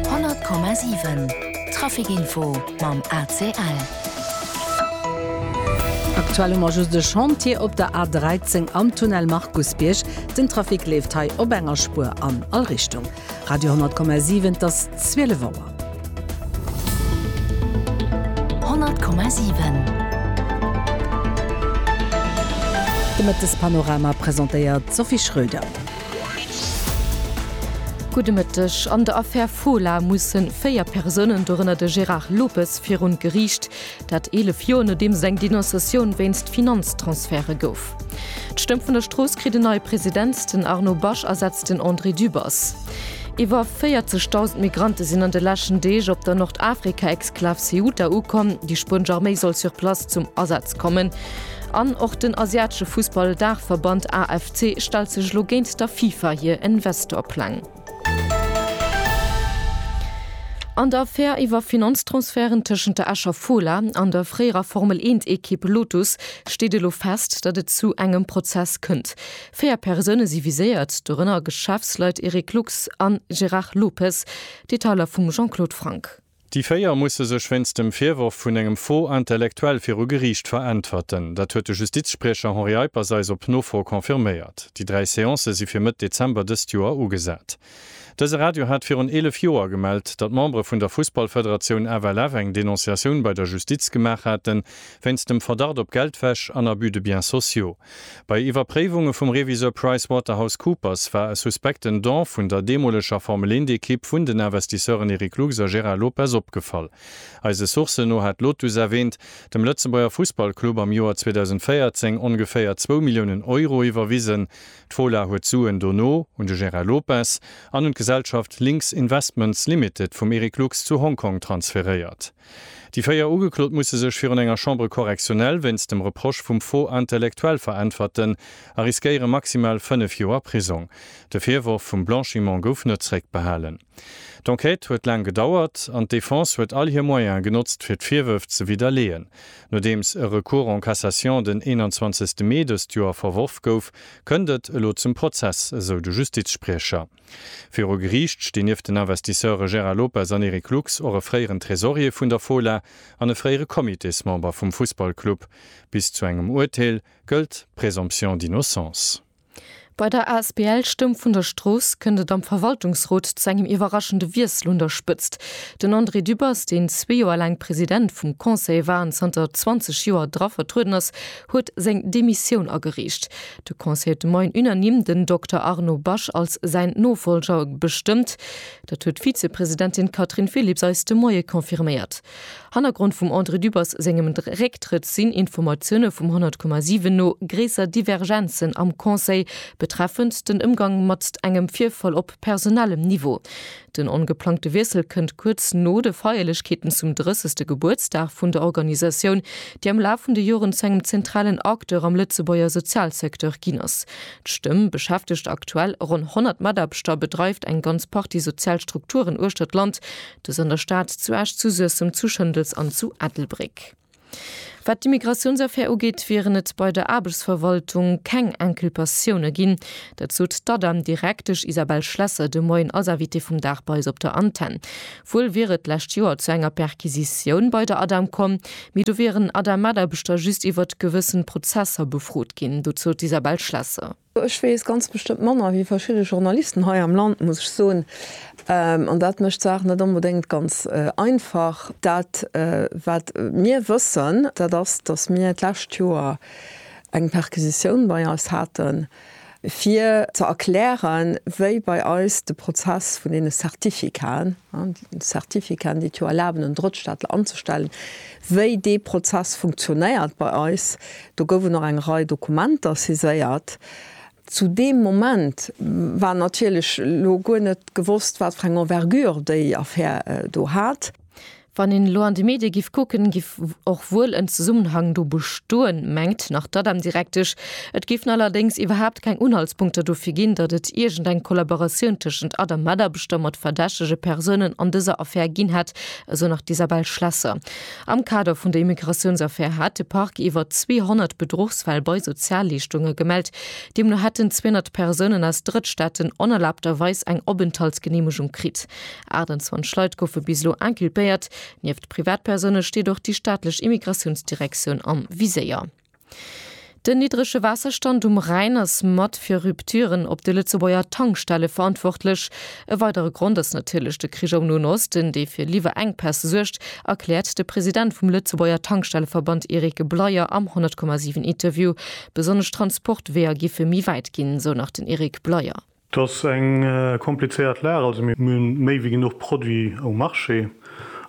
100,7 Trafic info mam ACL. Aktuell hu mer just e Chantier op der A13 am Tunnel Markusbierg. Den Trafic leeft hei op enger Spuer an all Richtung. Radio 10,7 Et ass 12 Auer. 100,7 De Mëttespanorama presentéiert d'Sophie Schröder. Gudde Mëtteg. An der Affär Fola musse véier Persounen, dorënner de Gérard Lopes, virun d'Geriicht. Dat 11 Joer nodeems eng Denonciatioun wéinst Finanztransferte gouf. D'Stëmm vun der Strooss kritt en neie President, den Arnaud Basch ersetzt den André Dübbers. Iwwer 40.000 Migrante sinn an de leschten Deeg op der Nordafrika-Exklav Ceuta ukomm. Déi spuenesch Arméi soll sur place zum Asaz kommen. An och den asiatesche Fussball-Daachverband AFC stellt sech elo géint der FIFA hir Investor-Pläng. An der Affär iwwer Finanztransferten tëschent der Escher Fola an der fréierer Formel-Eent-Ekipp Lotus steet elo fest, datt et zu engem Prozess kënnt. Véier Persoune si viséiert, dorënner Geschäftsleit Eric Lux an Gérard Lopez. Detailer vum Jean-Claude Franck. Déi véier musse sech wéinst dem Virworf vun engem Faux intellectuel viru Geriicht veräntwerten. Dat huet de Justizspriecher Henri Eippers eis op Nofro confirméiert. Déi dräi Seancë si fir Mëtt Dezember dëst Joer ugesat. Dëse Radio hat virun 11 Joer gemellt, datt Membere vun der Fussballfederatioun FLF eng Denonciatioun bei der Justiz gemaach haten, wéinst dem Verdacht op Geldwäsch an Abus de biens sociaux. Bei Iwwerpréiwunge vum Reviseur PricewaterhouseCoopers war e suspekten Don vun der deemoleger Formel-1-Ekipp vun den Investisseuren Eric Lux a Gérard Lopez opgefall. Eise Sourcen no hat Lotus erwähnt, dem Lëtzebuerger Fussballclub am Joer 2014 ongeféier zwou Milliounen Euro iwwerwisen. D'Fola huet d'Suen dono un de Gérard Lopez an un d'Gesellschaft Lynx Investments Limited vum Eric Lux zu Hongkong transferéiert. Déi véier Ugeklot musse sech virun enger Chambre correctionnelle wéinst dem Reproche vum Faux intellectuel veräntwerten a riskéiere maximal fënnef Joer Prisong. De Virworf vum Blanchiment gouf net zréckbehalen. D'Enquête huet laang gedauert an d'Defense huet all hir Moyene genotzt, fir d'Virwërf ze widderleeën. Nodeems e Recours en cassation den 21 Mee dëst Joer verworf gouf, kënnt et elo zum Prozess, esou de Justizspriecher. Viru Geriicht stinn nieft den Investisseure Gérard Lopez an Eric Lux och e fréieren Tresorier vun der Fola an e fréiere Comitésmember vum Fussballclub. Bis zu engem Urteel gëllt d'Présomption d'innocence. Bei der asbl Stëmm vun der Strooss kënnt et am Verwaltungsrot zu engem iwwerraschende Wiessel un der Spëtzt. Den André Dübbers, deen zwee Joer laang President vum Conseil war an zanter 20 Joer dra vertrueden ass, huet seng Demissioun agereecht. De Conseil de Maine unanime den Dokter Arnaud Basch als säin Nofolger bestëmmt. Dat huet d'Vizepresidentin Catherine Phillips eis de Moie confirméiert. Hannergrond vum André Dübbers sengem Récktrëtt sinn Informatioune vum 100,7 no gréisser Divergenzen am Conseil betreffend den Ëmgang mat engem Virfall op personellem Niveau. Den ongeplangte Wiessel kënnt kuerz no de Feierlechkeeten zum 30. Gebuertsdag vun der Organisatioun, déi am Laf vun de Joren zu engem zentralen Acteur am Lëtzebuerger Sozialsecteur ginn ass. D'Stëmm beschäftegt aktuell ronn 100 Mataarbechter a bedreift eng ganz Partie sozial Strukturen uechter d'Land, dës an der Stad, zu Esch, zu Suessem, zu Schëndels an zu Ettelbréck. Wat d'Immigratiounsaffär ugeet, wieren et bei der Aarbechtsverwaltung keng Inculpatioune ginn. Dat sot d'Adam-Direktesch Isabelle Schlesser de Moien als Invitée vum Dag bei eis op der Antenn. Wuel wier et d'lescht Joer zu enger Perquisitioun bei der Adam komm, mee do wieren Adam-Mataarbechter just iwwert gewëssen Prozesser befrot ginn. Dozou d'Isabelle Schlesser. Ech weess ganz bestëmmt manner wéi verschidde Journalisten hei am Land, muss ech soen. An dat mécht d'Saach net onbedéngt ganz einfach. Dat, wat mir wëssen, dat ass, datt mir d'lescht Joer eng Perquisitioun bei eis haten, fir ze erklären, wéi bei eis de Prozess vun deene Certificaten, Certificaten, déi et jo erlaben, en Drëttstaatler anzestellen, wéi dee Prozess funktionéiert bei eis. Do goufen och eng Rei Dokumenter saiséiert. Zu deem Moment war natierlech elo guer net gewosst, wat fir eng Envergure déi Affär do hat. Wann een elo an de Medie giff kucken, giff och wuel en Zesummenhang do bestoen, mengt nach d'ADEM-Direktesch. Et géifen allerdéngs iwwerhaapt keng Unhaltspunkter dofir ginn, datt et iergendeng Kollaboratioun tëschent ADEM-Mataarbechter mat verdächtege Persounen an dëser Affär ginn hätt, Esou nach d'Isabelle Schlesser. Am Kader vun der Immigratiounsaffär hat de Parquet iwwer 200 Bedruchsfäll bei Sozialleeschtunge gemellt. Deemno hätten 200 Persounen aus Drëttstaaten onerlaabterweis eng Openthaltsgeneemegung kritt. 28 Leit goufe bis elo inculpéiert. Nieft Privatpersoune steet och déi staatlech Immigratiounsdirektioun am Viséier. Den niddrege Waasserstand um Rhäin ass mat fir Rupturen op de Lëtzebuerger Tankstelle verantwortlech. E weidere Grond ass natierlech de Krich am Noen Osten, dee fir Liwwerenkpäss suergt, erkläert de President vum Lëtzebuerger Tankstelleverband Eric Bleyer am 100,7 Interview. Besonnesch d'Transportweeër giffe méi wäit ginn, sou nach den Eric Bleyer. Et ass eng komplizéiert Lag, also mir hunn méi wéi genuch Produit um Marché.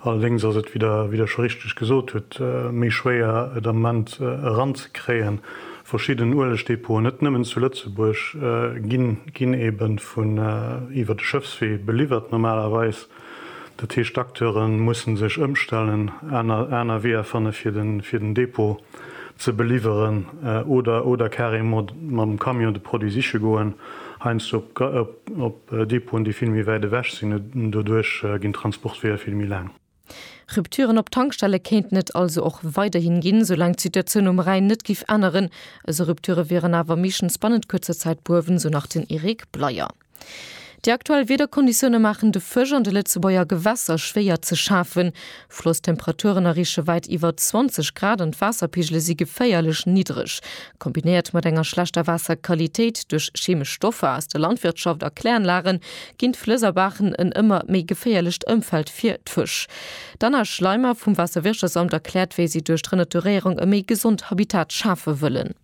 Allerdéngs ass et, wéi Der, wéi Der scho richteg gesot hutt, méi schwéier et am Moment eranzekréien. Verschidden Uelegdepoten, net nëmmen zu Lëtzebuerg, ginn eben vun iwwer de Schëffswee beliwwert normalerweis. Dat heescht, d'Acteure mussen sech ëmstellen, aner, aner Weeër fanne fir den, fir den Dépôt ze beliwweren oder, oder carrément mam Camion de Produit siche goen, heiansdo op, op, op Dépôten, déi vill méi wäit ewech sinn. An doduerch ginn d'Transportweeër vill méi laang. Rupturen op Tankstelle kéinten et also och weiderhi ginn, soulaang d'Situatioun um Rhäin net giff änneren. Esou Rupture wieren awer meeschtens bannent kuerzer Zäit behuewen, sou nach den Eric Bleyer. Déi aktuell Wiederkonditioune maachen de Fësch an de Lëtzebuerger Gewässer schwéier ze schafen. Flosstemperaturen erreeche wäit iwwer 20 Grad an d'Waasserpigele si geféierlech niddereg. Kombinéiert mat enger schlechter Waasserqualitéit duerch chemesch Stoffer aus der Landwirtschaft a Kläranlage ginn d'Flëss a Baachen en ëmmer méi geféierlecht Ëmfeld fir d'Fësch. D'Anna Schleimer vum Waasserwirtschaftsamt erkläert, wéi si duerch d'Renaturéierung e méi gesond Habitat schafe wëllen.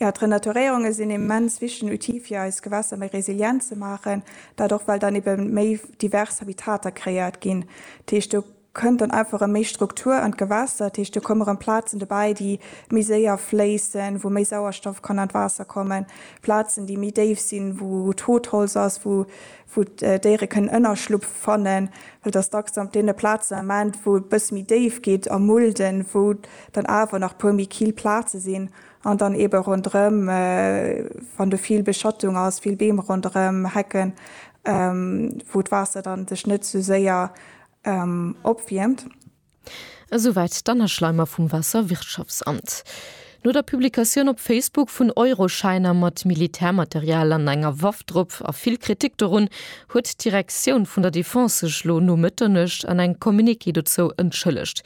Jo, d'Renaturéierunge sinn e immens wichtegen Outil fir eis Gewässer méi resilient ze maachen, dat och well dann ebe méi divers Habitater kreéiert ginn. Dat heescht, do kënnt dann einfach erëm méi Struktur an d'Gewässer, dat heescht do komme rëm Plazen dobäi, déi méi séier fléissen, wou méi Sauerstoff kann an d'Waasser kommen, Plazen, déi méi déif sinn, wou Totholz ass, wou d'Déiere kënnen Ënnerschlupf fannen. Well et ass dacks dann op deene Plazen am Enn, wou e bësse méi déif geet a Mulden, wou dann awer nach e puer méi kill Plaze sinn, An dann eebe ronderëm, wann do vill Beschattung ass, vill Beem ronderëm, Hecken, wou d'Waasser da sech net esou séier opwiermt. Esouwäit d'Anna-Schleimer vum Waasserwirtschaftsamt. No der Publikatioun op Facebook vun Euroschäiner mat Militärmaterial an enger Waff drop a vill Kritik dorun, huet d'Direktioun vun der Defense sech lo no Mëtternuecht an engem Communiqué dozou entschëllegt.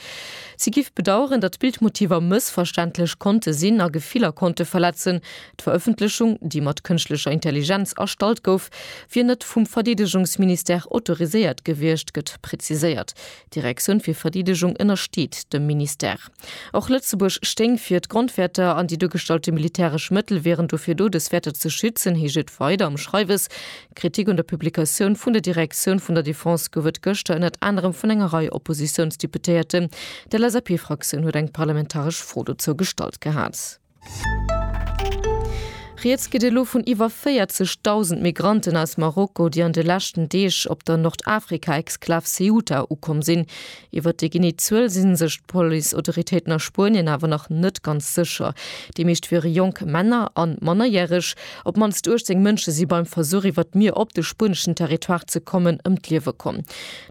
Si giff bedaueren, datt d'Bildmotiver mëssverständlech konnte sinn a Gefiller konnte verletzen. D'Verëffentlechung, déi mat kënschtlecher Intelligenz erstallt gouf, wier net vum Verdeedegungsministère autoriséiert gewiescht, gëtt preziséiert. D'Direktioun fir Verdeedegung ënnersteet dem Ministère. Och Lëtzebuerg stéing fir d'Grondwäerter an déi duergestallte militäresch Mëttel wieren dofir do, dës Wäerter ze schützen, heescht et weider am Schreiwes. Kritik un der Publikatioun vun der Direktioun vun der Defense gouf et gëschter ënnert anerem vun enger Rei Oppositiounsdeputéierten. D'LSAP-Fraktioun huet eng parlamentaresch Fro dozou gestallt gehat. Rieds geet elo vun iwwer 40.000 Migranten aus Marokko, déi an de leschten Deeg op der Nordafrika-Exklav Ceuta ukomm sinn. Iwwer déi genee Zuel si sech d'Policeautoritéiten a Spuenien awer nach net ganz sécher. Déi meescht wiere jonk Männer a mannerjäreg. Op d'mannst 18 Mënsche si beim Versuch, iwwer d'Mier op de spueneschen Territoire ze kommen, ëm d'Liewe komm.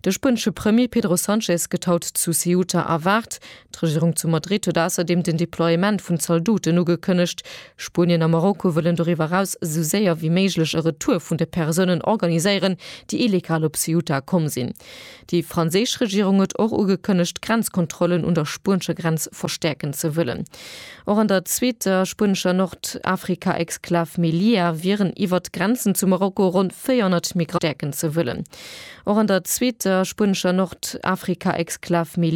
De spuenesche Premier Pedro Sanchez gëtt haut zu Ceuta erwaart. D'Regierung zu Madrid huet ausserdeem den Deploiement vun Zaldoten ugekënnegt. Spuenien a Marokko wëllen doriwwer eraus esou séier wéi méiglech e Retour vun de Persounen organiséieren, déi illegal op Ceuta komm sinn. Déi franséisch Regierung huet och ugekënnegt, d'Grenzkontrollen un der spuenescher Grenz verstäerken ze wëllen. Och an der zweeter spuenescher Nordafrika-Exklav Melilla wieren iwwert d'Grenzen zu Marokko ronn 400 Migranten verstärken ze wëllen. Och an der zweeter spuenescher Nordafrika-Exklav Melilla.